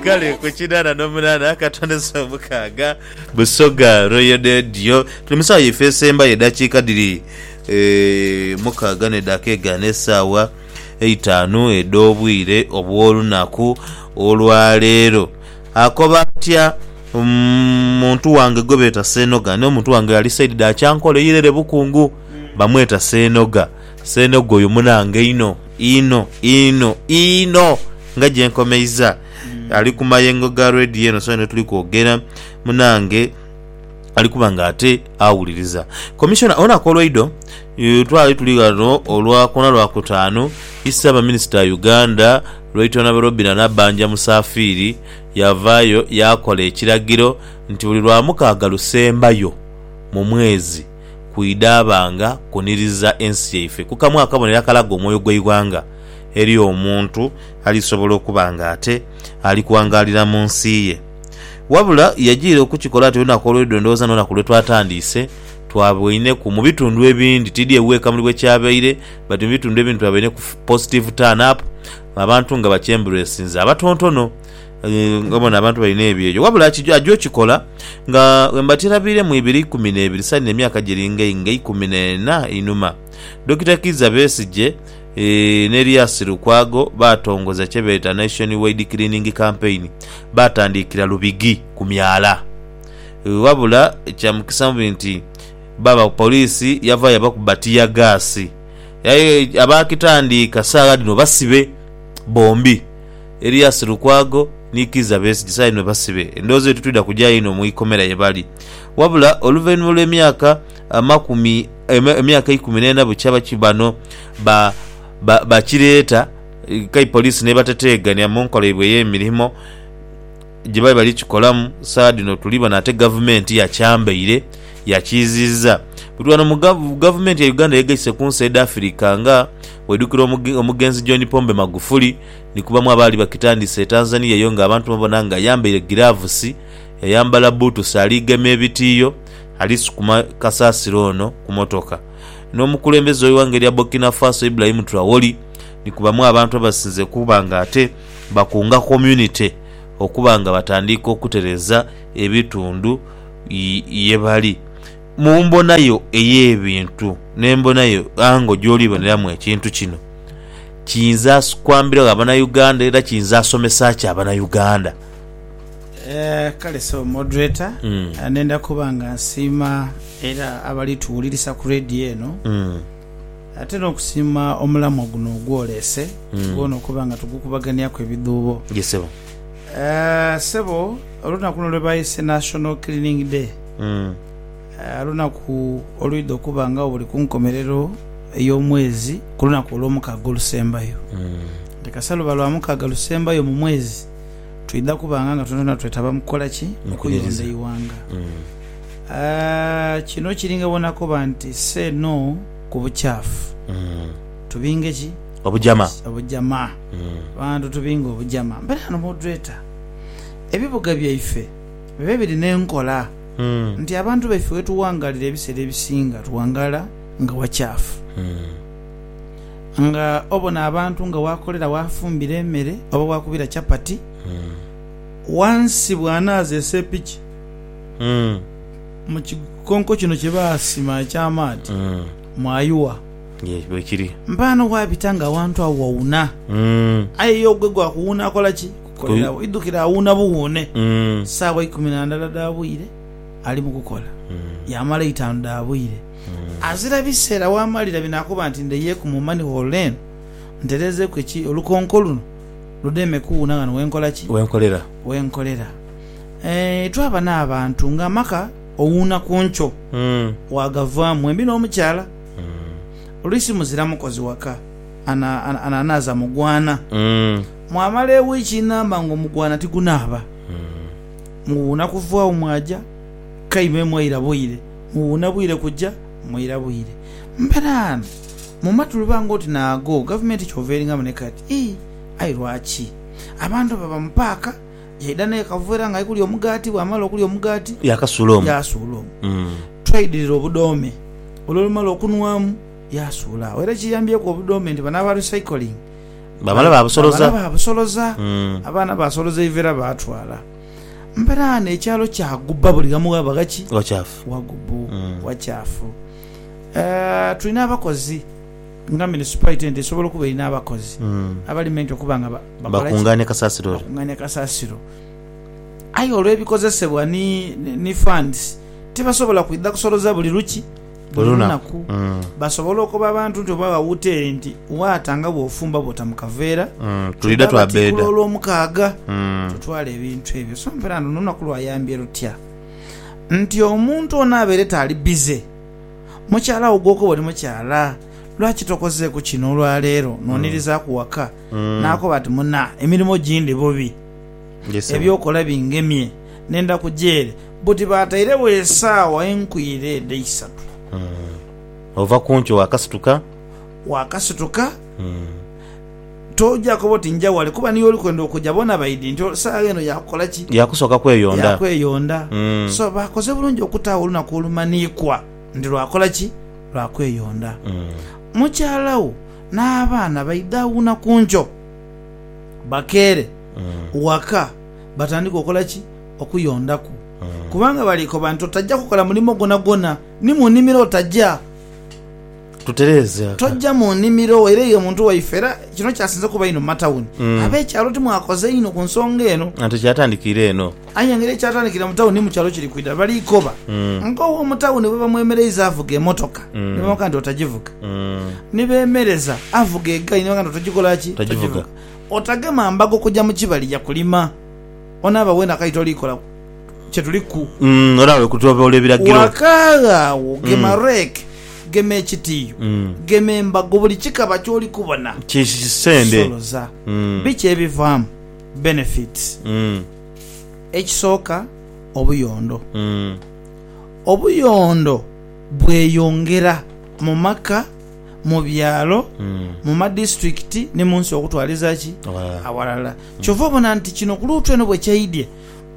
Kale ku kinaana n'omunaana ka twandese omukaaga. Busoga Royal Radio. Tuli mu saawa yaife esembayo edhakiika dhiri eh, mukaaga n'edhaaka egaano esaawa eitaanu edh'obwire obw'olunaku olwa leero. Akoba atya mm, muntu wange gwe beeta Seenoga. N'omuntu wange ali sayidi dha Kyankole, Irere Bukungu, bamweta Seenoga. Ssenhoga oyo munange inho inho inho inho nga gyenkomeiza ali ku mayengo ga radio eno so netuli kwogera munange ali kuba nga ate awuliriza commissioner olunaku olweidho eh, twali tuli ghano olwa kwona lwa kutaanu issaabaminisita wa Uganda Right Honourable Robinah Nabbanja Musaafiiri yavaayo yaakola ekiragiro nti buli lwamukaaga lusembayo mu mwezi kwidhabanga kuniriza ensi yaife ku kamu akabonero akalaga omwoyo gw'eighanga eri omuntu alisobola okuba nga ate ali kuwangaalira mu nsi ye. Wabula yajiira okukikola ati olunaku olw'eidhulo ndhowooza n'olunaku lwe twatandiise twaboineku mu bitundhu ebindi tiidhi ewuweka muli bwe kyabaire but mu bitundhu ebindi twaboineku positive turn up abantu nga bakyemburesinze abatontono nga bona abantu balina ebyeyo wabula aki aja okikola nga bwembatirabiire mu ibiri ikumi n'ebiri saino emyaka giri nga nga ikumi n'ena einhuma. Dokita Kiiza Besigye ni Erias Lukwago baatongoza kye beeta Nation Wide Cleaning Campaign baatandiikira Lubigi ku myala wabula kya mukisa mubi nti baba poliisi yava yabakuba ttiyaggaasi aye abaakitandiika saagha dhino basibe bombi. Erias Lukwago ni Kiiza Besigye saino basibe, endowooza eyo titwidha kugya inho mu ikomera ye bali. Wabula oluvainhuma olw'emyaka amakumi emyaka eikumi n'ena bukya baki bano ba ba bakireeta, kai poliisi n'ebateteegania mu nkola yaibwe ey'emirimo, gye bali bali kikolamu saha dhino tuli bona ate gavumenti yakyambaire yakiiziiza buli wano mu gavumenti ya Uganda yegaise ku nsi edh'Afirika nga bw'oidhukira omugenzi John Pombe Magufuli ni kubamu abaali bakitandise e Tanzania eyo nga abantu babona nga ayambaire giravusi yayambala bbuutusi ali gema ebitiiyo ali sukuma kasasiro ono ku motoka n'omukulembeze w'eighanga erya Burkina Faso Ibrahim Traore ni kubamu abantu abasinze okuba nga ate Bakunga community okuba nga batandiika okutereza ebitundu ye bali. Mu mbona yo ey'ebintu n'embona yo ango gy'oli boneramu ekintu kino, kiyinza kwambiragho Abanauganda era kiyinza somesa ki Abanauganda? Kale Ssebo Moderator, nenda kuba nga nsiima era abali tuwulirisa ku Radio eno. Ate n'okusiima omulamwa guno ogwoleese gwona okuba nga tugukubaganiaku ebidhuubo. Ye sebo. Eh, sebo, olunaku luno lwe bayese National Cleaning Day, eh, lunaku olwidha okuba nga buli ku nkomerero ey'omwezi ku lunaku olw'omukaaga olusembayo. Nti kasa luba lwa mukaaga lusembayo mu mwezi, twidha kubanga nga twonatwona twetaba mu kukola ki? Mu kuyonda Okwinhiriza. eighanga. Kino kiringa bona koba nti say no ku bukyafu. Tubinge ki? Obujama. Obujama. Abantu tubinge obujama. Mbere ghano mwodreta ebibuga byaife bibe biri n'enkola nti abantu baife wetuwangalira ebiseera ebisinga tuwangala nga wakyafu. Nga obona abantu nga wakolera wafumbira emere oba wakubira chapati wansi bwanaza esepiki. Mm. Mu kikonko kino kye baasima eky'amaadhi Mm. mwayuwa. Ye, bwekiri. Mpaana waabita nga awantu agho wawuna. Mm. Aye ye ogwe gwa kuwuuna akola ki? Kukolera agho. Idhukira awuuna buwuune. Mm. Saawa ikumi na ndala dha bwire ali mu kukola, Mm. yaamala eitaanu dha bwire. Azira biseera waamalira binaakoba nti ndheiyeku mu Money Hall eno ntereezeeku eki olukonko luno ludeme kuwuuna ghano we nkola ki? Wenkolera. We nkolera. Eeh twaba n'abantu nga amaka owuuna ku nkyo waagavaamu embi n'omukyala. Oluisi muzira mukozi waka ananaaza mugwaana. Mwamala ewiiki namba ng'omugwaana tigunaaba, muwuuna kuvaawo mwaja kaime mwaira bwire, muwuuna bwire kuja mwaira bwire. Mberaano mu matu luba ng'oti naago gavumenti kyova eringamu ne kati. Ii, Aye lwaki abantu baba mu paaka? Yaidha n'ekavera ng'ali kulya omugaati, bw'amala okulya omugaati. Yaakasuula omu. Yaasuula omu. Twaidhirira obudoome, olw'olumala okunhwamu, yaasuula agho. Era kiyambyieku obudoome nti bano aba recycling. Baamala baabusoloza. Baamala baabusoloza. Abaana baasoloza eivera baatwala. Mberaano ekyalo kyagubba buli ghamu ghaba ghaki? Ghakyafu. Ghagubbu, ghakyafu. Tulina abakozi. Nga Minisipalite ento esobola okuba erina abakozi abali mu ento okuba nga bakola ki? Bakungaania kasasiro. Aye olw'ebikozesebwa ni funds tibasobola kwidha kusoloza buli luki? Buli lunaku. Basobola okoba abantu nti oba agha wuteeri nti waata nga bw'ofumba bw'ota mu kaveera twidha batikula Olwomukaaga tutwale ebintu ebyo. So mperando n'olunaku lwayambye lutya nti omuntu ono abeere taali bize? Mukyala wo gwokoba oli mukyala, lwaki tokozeeku kino olwa leero n'onirizaku waka? N'akoba ati, Muna, emirimo gindi bubi, eby'okola bingemye, nenda kuja ere. Buti baatairegho esaawa enkwire edha isatu. Ova ku nkyo waakasituka. Waakasituka. Toja koba oti nja wale kuba niyo oli kwenda okuja. Bona baidhi nti saagha eno ya kukola ki? Ya kusooka kweyonda. Ya kweyonda. So bakoze bulungi okutaagho olunaku olumanhiikwa nti lwa kola ki? Lwa kweyonda. Mukyala wo n'abaana baidha awuuna ku nkyo bakeere waka batandike okola ki? Okuyondaku. Kubanga bali koba nti otaja kukola mulimo gwonagwona ni mu nimiro otaja. tutereeze aka. Tojja mu nnimiro wo, era eyo omuntu waife, era kino kyasinze kuba inho mu matawuni. Ab'ekyalo timwakoze inho ku nsonga eno? Ate kyatandika ire eno. Aye engeri ekyatandikira mu tawuni ni mu kyalo kiri kwidha. Bali koba ng'ow'omu tawuni bwe bamwemereiza avuga emotoka ni bamukoba nti, Otagivuga. Ni beemereza avuga egaali ni bakoba nti, Otagikola ki? Otagivuga. Otagema mbago kuja mu kibali ya kulima. Onaaba weena kali toliikolaku. kye tuliku. Olaba bwe kutyoboola ebiragiro. Wakaagha agho gema rake, gema ekitiiyo, gema embago, buli kikaba ky'oli kubona. Kisende. Soloza. Biki ebivaamu? Benefits. Ekisooka, obuyondo. Obuyondo bweyongera mu maka, mu byalo, mu madisiturikiti ni mu nsi okutwaliza ki? Awalala. Kyova obona nti kino ku luutu eno bwe kyaidhye,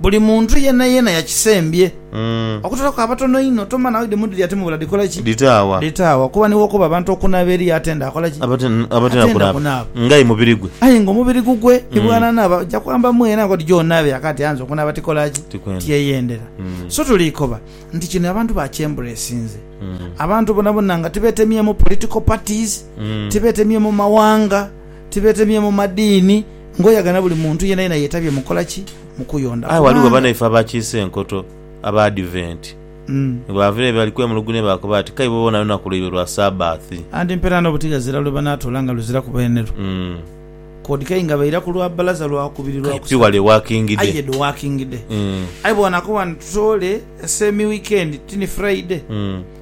Buli muntu yeenayeena yakisembye, okutolaku abatono inho. Tomanya nawe dhimu dhiri ati mubula dhikola ki? Dhitaagha. Dhitaagha. Kuba ni w'okoba abantu okunaaba eriyo atenda akola ki? Abatenda kunaaba. Ng'aye mubiri gwe. Aye ng'omubiri gugwe ni bw'anaanaaba, aja kwamba mwene ati, Odiyo onaabe yaka ati anze okunaaba tikola ki? Tiyeyendera. So tuli koba nti kino abantu bakyembulesinze. Abantu bonabona nga tibeetemyemu political parties, tibeetemyemu mawanga. Tibeetemye mu madiini ngoyaga na buli muntu yenayena yeetabye mu kukola ki? Mu kuyonda. Aye ghaligho kubanga. banaife abakiise enkoto, Abaadiventi, ni bw'ava ere bali kwemulugunya baakoba ati, K'aibo boona lunaku lwaibwe lwa Saabbathi. Anti mpera n'obuti ghazira lwe banaatoola nga luzira ku beenerwo. Mm. Kod kei nga baira ku lwa bbalaza lwa kubiri lwa K'ai pi kusatu. wale wakingide. Aye do wakingide. Mm. Aye bw'anaakoba nti, Tutoole se mi wiikendi, ti ni Furaide. Mm.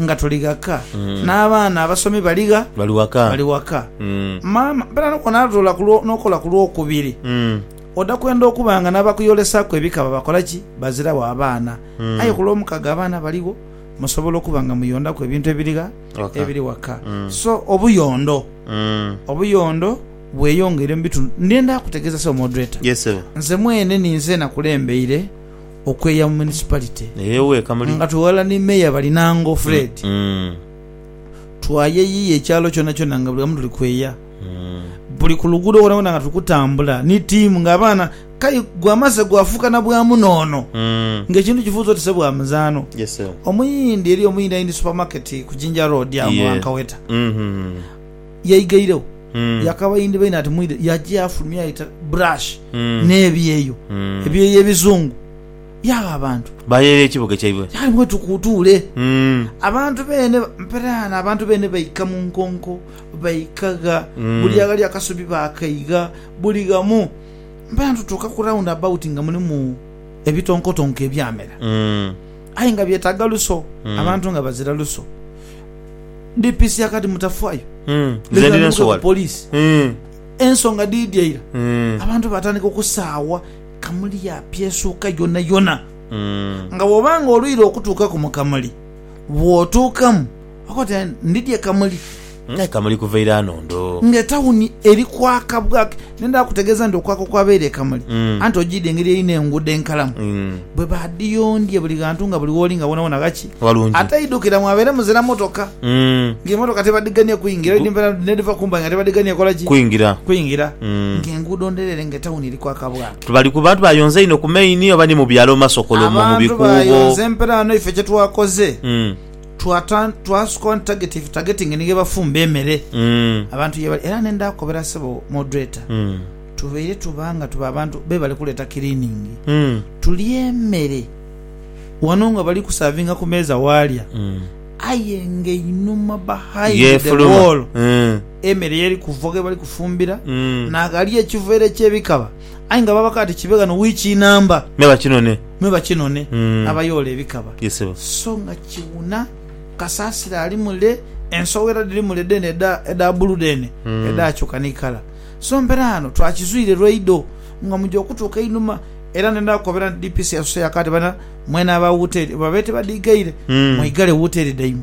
nga tuli ghaka mm. n'abaana abasomi bali gha bali waka bali waka mm. maama mpera nokona atola nokola ku lwokubiri mm. oda kwenda okuba nga n'abakuyolesaku ebika babakola ki bazirawo abaana mm. aye ku lwomukaga abaana baligho musobola okuba nga muyondaku ebintu ebiri gha okay. ebiri waka mm. so obuyondo mm. obuyondo bweyongeire mu bitundu ndenda kutegeza se omodreta yes, nze mwene ninze nakulembeire okweeya mu municipality nga tweghala ni mayor Balinango Fred twayeyiya ekyalo kyona kyona nga buli wamu tuli kweeya buli ku luguudo ghona ghona nga tuli kutambula ni team nga abaana kale gwamaze gwafuuka na bwa muno ono nga ekintu kifuuze oti se bwa muzaano omuyindi eriyo omuyindi ali ni supermarket ku Jinja road agho gha Nkaweta. yaigaireo yakaba yindhibaine ati mwidhe yaja yafulumya yaita brush n'ebyeyo ebyeyo ebizungu yagha abantu Bayeeya ekibuga kyaibwe. yali mwe tukutuule Mm. abantu beene ba- mperaano abantu beene baika mu nkonko baika gha buli aghali akasubi baakaigha buli ghamu mperaano tutuuka ku round about nga mulimu ebitonkotonko ebyamera Mm. aye nga byetaaga luso abantu nga bazira luso ndipisia kati mutafayo Nze ndina ensowala police ensonga dhidhi eira abantu batandika okusaawa Kamuli yapya esuuka yonayona nga bwoba nga olwire okutuukaku mu Kamuli bwotuukamu okoba oti ndidhi e Kamuli Kamuli kuva ira nondo nga etauni eri kwaka bwaka. Ne ndaakutegeeza nti okwaka okwabaire e Kamuli, anti ojiidha engeri erina enguudo enkalamu, bwe baadhiyondhye buli ghantu nga buli wooli nga woonawoona ghaki, ate idhukira mwabaire muzira motoka, nga emotoka tebadhigania kwingira, edhimpeera n'edhiva ku mbai nga tebadhigania kola ki? Kwingira, nga enguudo ndhereere nga etawuni eri kwaka bwaka. Tibali ku bantu bayonza inho ku maini oba ni mu byalo mu masokolo omwo mu bikuubo. Abantu bayonza emperaano ife kye twakoze. Twasooka wano target ife targeting ni ghebafumba emere abantu yebali era nenda kukobera sebo moderator tubeire tuba nga tuba abantu bebali kuleta cleaning tulye emere wano nga bali kusavinga ku meeza walya aye nga einhuma behind the Yefuluma. wall emere yeri kuva ghebali kufumbira naghali ekiveera ekyebikaba Aye nga baba kati kibe ghano wiiki inamba. Me bakinone. Me bakinone abayoola ebikaba. Ye sebo. So nga kiwuna, kasasiro ali mule, ensowera dhiri mule dheene edha, edha bbulu dheene edhaakyuka ni kala. So mpera ghano twakizwire lwaidho nga muja okutuuka einhuma. Era ndenda kukobera nti DPC yasuse yakoa ati, Bana, mwena aba wuteeri, oba babe tibadhiigaire, mweigale wuteeri dhaimwe.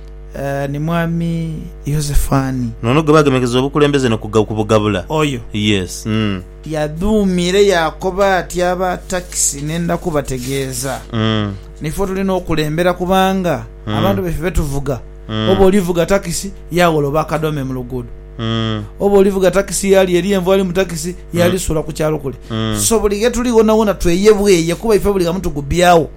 ni mwami Yosefani. N'ono gwe baagemekeza obukulembeze no kubugabula. Oyo. Yes. Mm. Yadhuumire yaakoba ati, Aba takisi nenda kubategeeza. Mm. Nife otuli n'okulembera kubanga abantu baife be tuvuga, oba olivuga takisi yagholoba akadome mu luguudo, oba olivuga takisi yaalya eri envu ali mu takisi yaalisuula ku kyalo kule. So buli ghe tuli ghonawona tweyebweye kuba ife buli ghamu tugubyagho.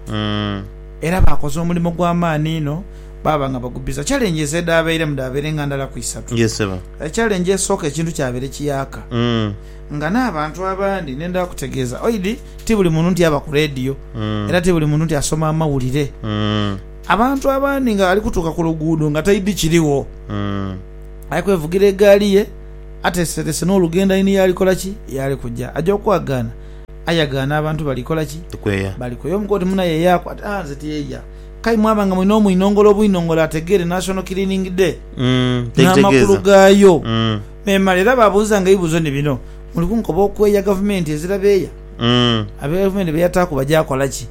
Era baakoze omulimo gwa maani inho, baaba nga bagubbiza. Challenge ez'edhaabeiremu dhaabeirenga ndala ku isatu. Yee ssebo. Challenge esooka ekintu kyabaire kiyaaka nga n'abantu abandi ne ndhakutegeeza oidhi ti buli muntu nti aba ku leediyo era ti buli muntu nti asoma amawulire. Abantu abandi nga ali kutuuka ku luguudo nga taidhi kirigho ali kwevugira egaali ye ateeseteese n'olugendo aine y'ali kukola ki? Y'ali kuja. Aja okwagaana. Aye ghano abantu bali kola ki? Kweya. Bali kweya. Omu koti munaye eyaaku ati, Ah, nze tiyeya. K'aye mwaba nga mulina omwinongole obwinongole ategeere National Cleaning Day n'amakulu gaayo memale era baabuuzanga ebibuuzo ni bino, Muli kunkoba okweya gavumenti ezira beeya? Abe gavumenti be yataaku baja kola ki?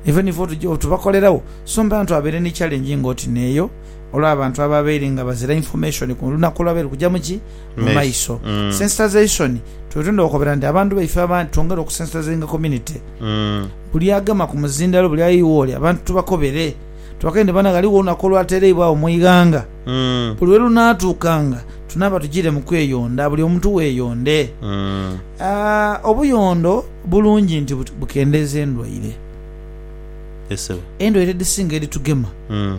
Ife ni fo tubakoleragho, so mbantu abaire ni challenge ng'oti n'eyo olw'abantu ababaire nga bazira information ku lunaku olwabaire lukugyamu ki? mu maiso sensitization twetwenda okukobera nti abantu baife abandi twongere okusensitizinga community buli agema ku muzindalo buli aye iwoli abantu tubakobere tubakere nti bana ghaligho olunaku olwatereibwagho mu ighanga buli welunatuukanga tunaaba tugire mu kweyonda buli omuntu weyonde Ah, obuyondo bulungi nti bu- bukendeeza endwaire Yes, sebo. endwaire edhisinga edhitugema Mm.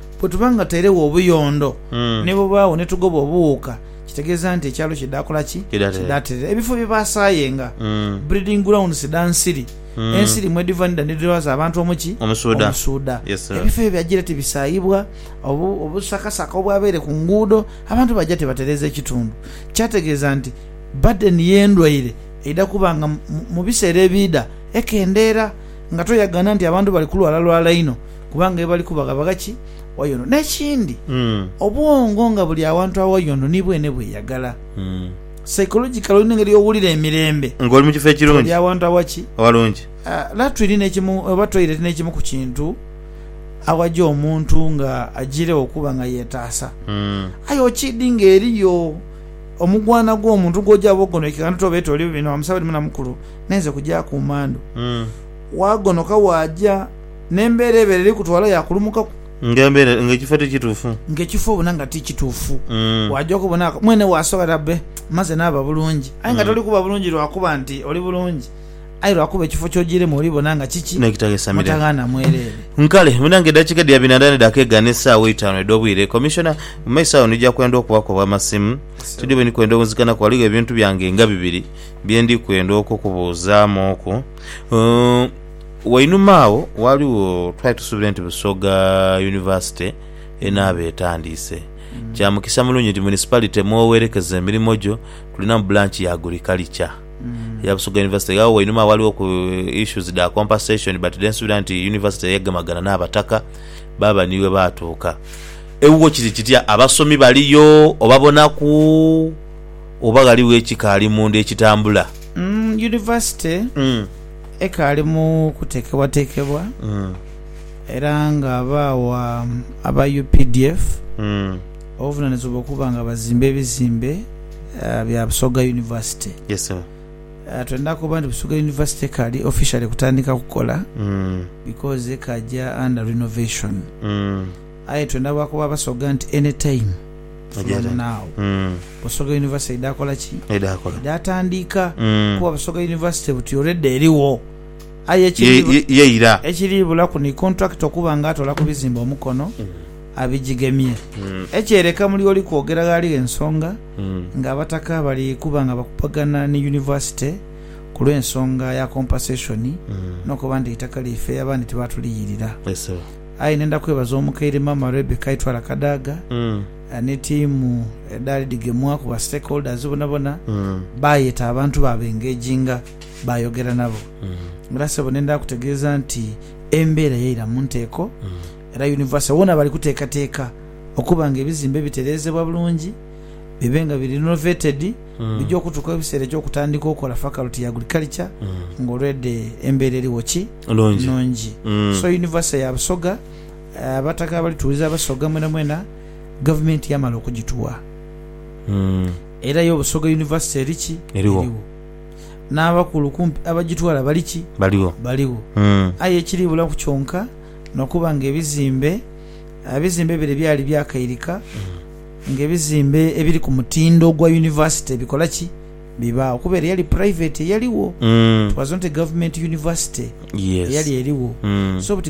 Bwe tuba nga tairegho obuyondo ni bubaagho ni tugoba obuwuuka, kitegeeza nti ekyalo kidaakola ki? Kidaaterera. Ebifo bye baasaayenga, breeding grounds, dha nsiri, ensiri mwedhiva ni dha ni dhirwaza abantu omu ki? Omusuudha. Ebifo ebyo byagira tibisaayibwa, obusakasaka obwabaire ku nguudo abantu baja tibatereeza ekitundu. Kyategeeza nti badeni y'endwaire eidha kuba nga mu biseera ebiidha ekendeera nga toyagaana nti abantu bali kulwalalwala inho. kubanga ebali kubaghabagha ki wayondo. N'ekindi, obwongo nga buli awantu awayondo ni bwene bweyagala. Psychological olina engeri y'owulira emirembe. Nga oli mu kifo ekirungi. Oli awantu awa ki? Awalungi. Latwiri n'ekimu oba toilet n'ekimu ku kintu awaja omuntu nga ajiiregho okuba nga yetaasa. Aye okiidi nga eriyo omugwana gw'omuntu gw'oja bwogonokeka nga notoba oti oli bino wa musaadha oli munamukulu, n'enze kujaaku mmandhu, waagonoka waaja. N'embeera ebeere eri kutwala yaakulumukaku. Ng'embeera, ng'ekifo ti kituufu. Ng'ekifo obona nga ti kituufu. Waaja okubona nga mwene waasobola bbe maze naaba bulungi. Aye nga toli kuba bulungi lwa kuba nti oli bulungi, aye lwa kuba ekifo ky'ojiiremu olibona nga kiki? Mutaghaana mwereere. Kale, bwina ng'eddakiika dhiri abiri na ndala edha keegana n'essaawa eitaanu edh'obwire, Commissioner, mu maiso agho ndija kwenda okubaku obw'amasimu. Tidhi bwe ndi kwenda okunzikanaku, ghaligho ebintu byange nga bibiri bye ndi kwenda okukubuuzaamuuku. Wainuma agho ghaligho twali tusuubire nti Busoga Yunivasite enaaba etandiise. Kya mukisa mulungi nti Municipality mw'owerekeza emirimo gyo tulinamu Branch ya Agriculture eya Busoga University. Agho wainuma agho ghaligho ku issues dha compensation but then nsuubira nti University yagemagana n'Abataka baaba ni webaatuuka. Ewuwo kiri kitya? Abasomi baliyo oba bonaku oba ghaligho ekikaali munda ekitambula? Yunivasite Ekaali mu kuteekebwateekebwa era nga baawa aba updf obuvunanizibwa okuba nga bazimba ebizimbe bya Busoga University. Twendha koba nti Busoga University ekaali officially kutandika kukola because ekaaja under renovation. Aye twena lwakuba basoga nti any time from now Busoga University eidha kola ki? Eidha tandiika kuba Busoga University buti already erigho aye ekiri bulaku ni contractor okuba nga atola ku bizimbe omukono abijigemye. Ekyereka muli oli kwogera ghaligho ensonga nga abataka bali kuba nga bakubagana ni University ku lw'ensonga ya compensation n'okuba nti eitaka lyaife abandi tibatuliyirira. Aye nenda kwebaza omukaire maama Rebecca Itwala Kadaga ni tiimu edhali dhigemwa ku ba stakeholders bonabona baayeta abantu baabengeejinga baayogera nabo. Era ssebo nenda kutegeeza nti embeera yaira mu nteeko era Universal wona bali kuteekateeka okuba nga ebizimbe bitereezebwa bulungi bibe nga biri renovated Bidha okutuuka ebiseera eky'okutandika okola faculty ya agriculture nga already embeera eriwo ki? Nungi. So University ya Busoga, abataka abalituwuliza Abasoga mwenamwena, gavumenti yamala okugituwa era yo Busoga University eri ki? Eriwo. N'abakulu kumpi abagitwala bali ki? Baligho. Baligho. Aye ekiri bulaku kyonka nokuba nga ebizimbe, ebizimbe bire byali byakairika. Nga ebizimbe ebiri ku mutindo ogwa yunivasite bikola ki? Bibaagho kuba ere yali purayiveti eyaligho. It was not a government university eyali erigho. So but.